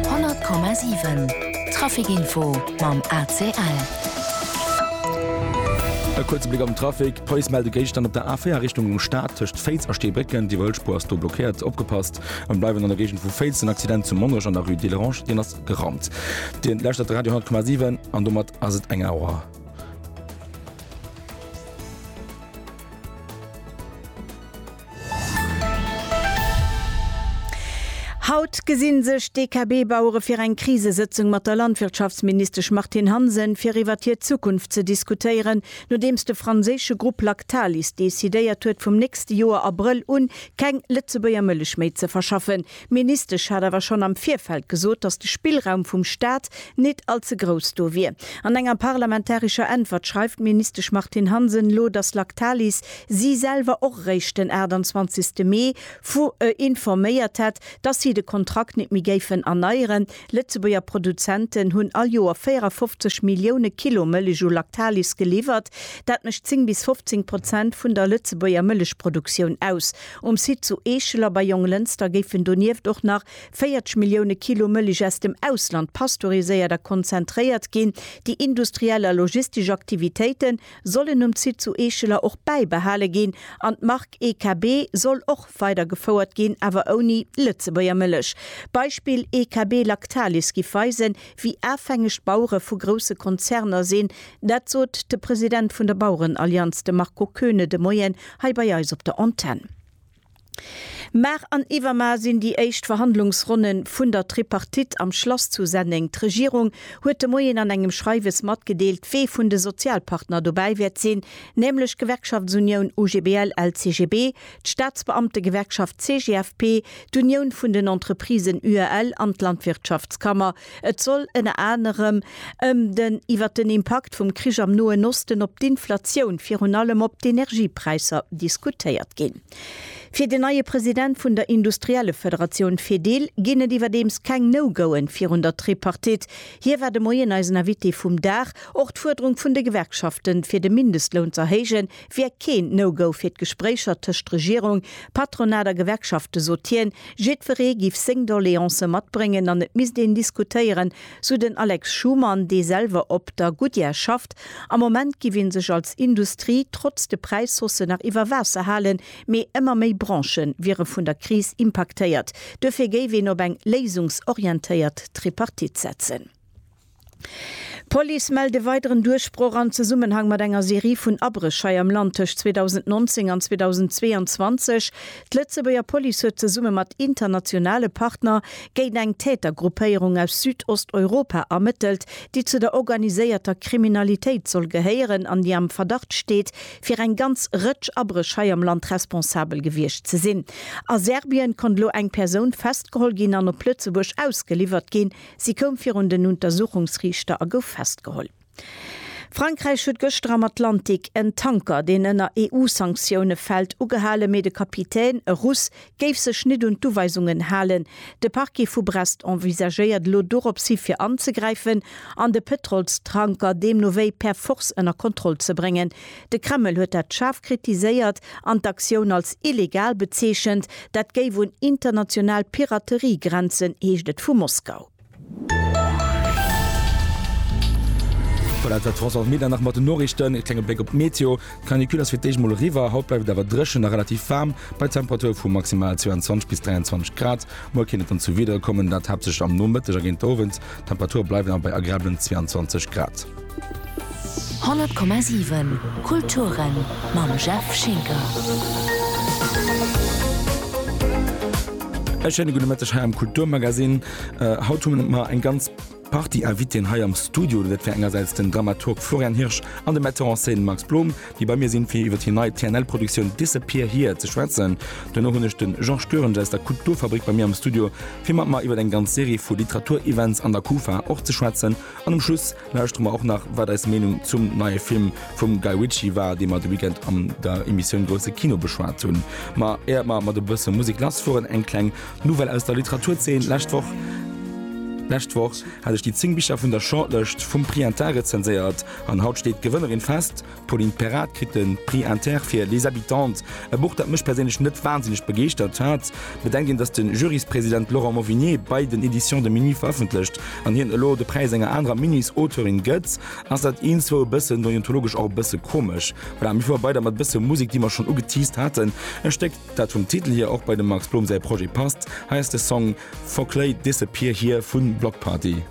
100,7 Trafic-Info mam ACL. E kuerze Bléck am Trafic, D'Police mellt e Géigstand op der A4 Richtung Stad tëscht Féiz a Steebrécken. Déi Wëllspur ass do blockéiert. Opgepasst! An bleiwen an der Géigend vu Féiz, den Accident zu Monnerech an der Rue Delerange, deen ass gerannt. Dir lauschtert de Radio 100,7 an domat ass et eng Auer. Haut gesinn sech d'DKB-Bauere fir eng Krisesëtzung mat der Landwirtschaftsministesch Martine Hansen, fir iwwert hir Zukunft ze diskutéieren, nodeems de franséische Grupp Lactalis decidéiert huet, vum nächste Joer Abrëll un keng Lëtzebuerger Mëllech méi ze verschaffen. D'Ministesch hat awer schonn am Virfeld gesot, datt de Spillraum vum Staat nit all ze grouss do wier. An enger parlamentarescher Äntwert schreift d'Ministesch Martine Hansen elo, datt Lactalis si selwer och eréischt den 28 Mee vu informéiert hätt, datt si de Kontrakt nit méi géifen erneieren. Lëtzebuerger Produzenten hunn all Joer 54 Millioune Kilo Mëllech u Lactalis geliwwert. Dat mécht 10 bis 15 Prozent vun der Lëtzebuerger Mëllechproduktioun aus. Um Site zu Eeschel a bei Jonglënster géifen donieft och nach 40 Millioune Kilo Mëlich aus dem Ausland pasteuriséiert a konzentréiert ginn. Déi industriell a logistesch Aktivitéite sollen um Site zu Eescheler och bäibehale ginn an d'Mark EKB soll och weidergefouert ginn, awer ouni Lëtzebuerger Mëlich. Beispill EKB Lactalis giff weisen, wéi afhängeg d'Bauere vu grousse Konzerner sinn. Dat sot de President vun der Bauerenallianz, de Marco Koeune, de Moien hei bei eis op der Antenn. Mar an Iwwermar sinn déi éischt Verhandlungsronne vun der Tripartite am Schlass zu Senneng. D'Regierung huet de Moien an engem Schreiwes matgedeelt, wee vun de Sozialpartner dobäi wäert sinn, nämlech Gewerkschaftsunioun UGBL-LCGB, d'Staatsbeamtegewerkschaft CGFP, d'Unioun vun den Entreprisen UEL an d'Landwirtschaftskammer. Et soll ënner anerem ëm den iwwer den Impakt vum Krich am Noen Osten op d'Inflatioun, virun allem op d'Energiepräisser, diskutéiert ginn. Fir den neie President vun der Industriellefederatioun Fedil ginn et iwwerdeems keng No-Goen virun der Tripartite. Hie war de Moien eisen Invité vum Dag. Och d'Fuerderung vun de Gewerkschaften, fir de Mindestloun z'erhéijen, wier keen No-Go fir d'Gespréicher tëscht Regierung, Patronat a Gewerkschafte sot hien. Jiddweree giff seng Doleancë matbréngen an et misst een diskutéieren, sou den Alex Schumann, dee selwer op der Goodyear schafft. Am Moment giff ee sech als Industrie trotz de Präishausse nach iwwer Waasser halen, mee ëmmer méi Branche wiere vun der Kris impaktéiert. Duerfir géif een op eng léisungsorientéiert Tripartite setzen. D'Police mellt e weideren Duerchbroch am Zesummenhang mat enger Serie vun Abréch hei am Land tëscht 2019 an 2022. D'Lëtzebuerger Police huet zesumme mat internationale Partner géint eng Tätergruppéierung aus Südosteuropa ermëttelt, déi zu der organiséierter Kriminalitéit soll gehéieren an déi am Verdacht steet, fir eng ganz Rëtsch Abréch hei am Land responsabel gewiescht ze sinn. A Serbien konnt elo eng Persoun festgeholl ginn an op Lëtzebuerg ausgeliwwert ginn. Si koum virun den Untersuchungsriichter a gouf festgeholl. Frankräich huet gëschter am Atlantik en Tanker, deen ënner EU-Sanktioune fält, ugehalen, mee de Kapitän, e Russ, géif sech net un d'Uweisungen halen. De Parquet vu Brest envisagéiert elo dorops hi fir anzegräifen an de Pëtrolstanker deemno wéi per Force ënner Kontroll ze bréngen. De Kreml huet dat schaarf kritiséiert an d'Aktioun als illegal bezeechent. Dat géif un international Piraterie grenzen, heescht et vu Moskau. Voilà, dat war d'France Almeida nach mat den Noriichten. E klenge Bléck op d'Meteo, D'Canicule ass fir d'éischt mol eriwwer. Haut bleift et awer dréchen a relativ waarm, bei Temperature vu maximal 22 bis 23 Grad. Muer kéint et dann zu Wiederer kommen, dat haaptsächlech am Nomëtteg a géint d'Owend. D'Temperature bleiwen awer bei agreabelen 22 Grad. 100,7 Kulturen mam Jeff Schinker. E schéine gudde Mëtteg hei am Kulturmagasinn. Haut hu mer eng ganz Partie Invitée hei am Studio. Dat wär engersäits den Dramaturg Florian Hirsch an de Metteur en scène Max Blom, déi bei mir sinn, fir iwwer hir nei TNL-Produktioun Disappear Here ze schwätzen. Duerno hunn ech de Georges Goerens aus der Kulturfabrik bei mir am Studio, fir mat mer iwwer eng ganz Serie vu Literaturevents an der Kufa och ze schwätzen. An um Schluss lauschtere mer och nach, wat eis Meenung zum neie Film vum Guy Ritchie war, dee mer de Weekend an der Emissioun Grousse Kino beschwat hunn. Ma éiert mer mat e bësse Musek lassfueren, eng kleng Nouvelle aus der Literaturzeen, Lescht Woch, lescht Woch hat ech déi 10 Bicher vun der Shortlëscht vum Prix Inter rezenséiert an haut steet d'Gewënnerin fest, D'Pauline Perrard kritt de Prix Inter fir Les habitantes, e Buch, dat mech perséinlech net wansinneg begeeschtert hat. Bedenkt een, datt de Juryspresident Laurent Mauvigné bei den Editions de Minuit verëffentlecht an hien elo de Präis enger anerer Minuits-Auteurin gëtt, ass dat eentzwou e bëssen deontologesch och e bësse komesch. Voilà, mir fuere weider mat e bësse Musek, déi mer schonn ugeteased haten. E Stéck, dat vum Titel hier och bei dem Max Blom säi Projet passt. Hei ass de Song Foclay Disappear Here vun Bloc Party.